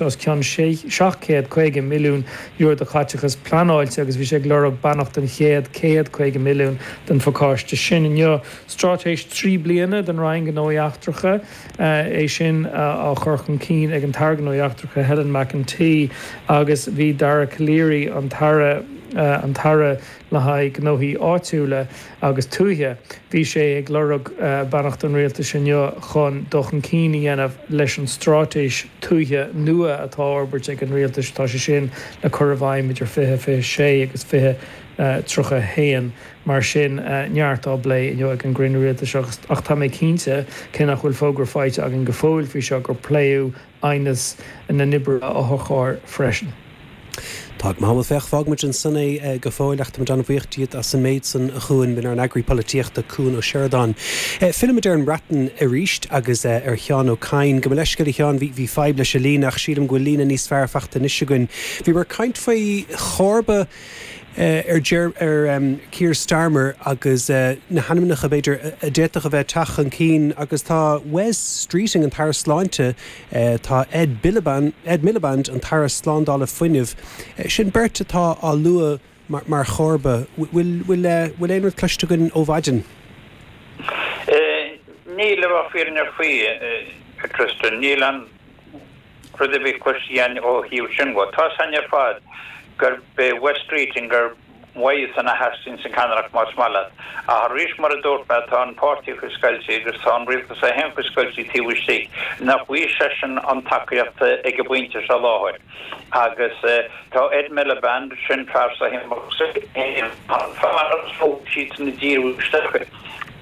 os cionn €750,000,000 de chaiteachas pleanáilte agus bhí sé ag lorg beannacht don chéad 150 milliún den phacáiste sin. Inniu, straitéis trí bliana don Roinn Gnóthaí Eachtracha, é sin á chur chun cinn ag an tAire Gnóthaí Eachtracha Helen McEntee agus bhí Dara Calleary, an tAire, an tAire le haghaidh Gnóthaí Áitiúla, agus tuaithe. Bhí sé ag lorg beannacht an Rialtais inniu chun dul chun cinn a dhéanamh leis an straitéis tuaithe nua atá á fhorbairt ag an Rialtais. Tá sé sin le cur i bhfeidhm idir 2026 agus 2031 mar sin neart á bplé inniu ag an gcruinniú Rialtais ach tá mé cinnte, cé nach bhfuil fógra faighte againn go fóill faoi seo, gur pléadh aighneas na n-oibrithe otharchairr freisin. Tá go maith, bhuel, féach, fágfaimid ansin é go fóill ach táimid an-bhuíoch díot as an méid san a Chuain. B'in ár nEagraí Polaitíochta, Cuan Ó Seireadáin. Fillimid ar an mBreatain arís agus ar Sheán Ó Cadhain. Gabh mo leithscéal, a Sheáin, bhí fadhb leis an líne ach sílim go bhfuil líne níos fearr faighte anois againn. Bhíomar ag caint faoi chomharba. ar Keir Starmer agus na hainmneacha, b'fhéidir, a d'fhéadfadh a bheith ag teacht chun cinn agus tá Wes Streeting, an tAire Sláinte, tá Ed Miliband, an tAire Slándála Fuinnimh, sin beirt atá á lua mar chomharba. Bhfuil aon rud cloiste againn ó mhaidin? Níl, le bheith fírinneach faoi, a Tristan. Níl aon rud a bhí cloiste againn ó thaobh sin de. Tá a fhios againn ar fad gurb é Wes Streeting ar mhaith san a theastaíonn sa cheannaireacht más maith leat. Ach arís mar a dúirt mé tá an páirtí faoi scoilt agus tá an rialtas é féin faoi scoilt taobh istigh. Nach bhfaighidh seisean an tacaíocht ag an bpointe seo i láthair agus tá Ed Miliband, sin fear sothiomnacht Shinn Féin, an fear agus fógraí siadsan i dtír isteach.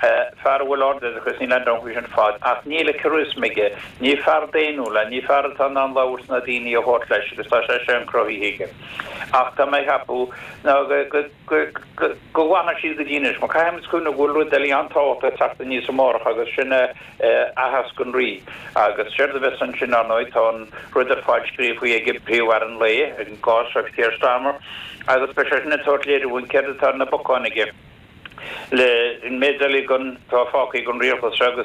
Fear a bhfuil ard-oideachas, níl aon dabht faoi sin ar fad, ach níl an charisma aige. Ní fear daonnúil é, ní fear atá in ann labhairt is na daoine a thabhairt leis agus tá sé sin cruthaithe aige. Ach tá mé ag ceapadh ná go bhfanfaidh siad go dtí anois. Mar caithfimid cuimhneamh go bhfuil rud eile an-tábhachtach ag teacht aníos amárach agus sin Aitheasc an Rí. Agus séard a bheas ansin, ar ndóigh, tá an rud ar fáil scríofa ag príomh-aire an lae, i gcás Sir Keir Starmer, agus beidh seisean ag tabhairt léiriú dúinn céard atá ar na bacáin aige le méid de bhlianta atá fágtha ag an Rialtas seo.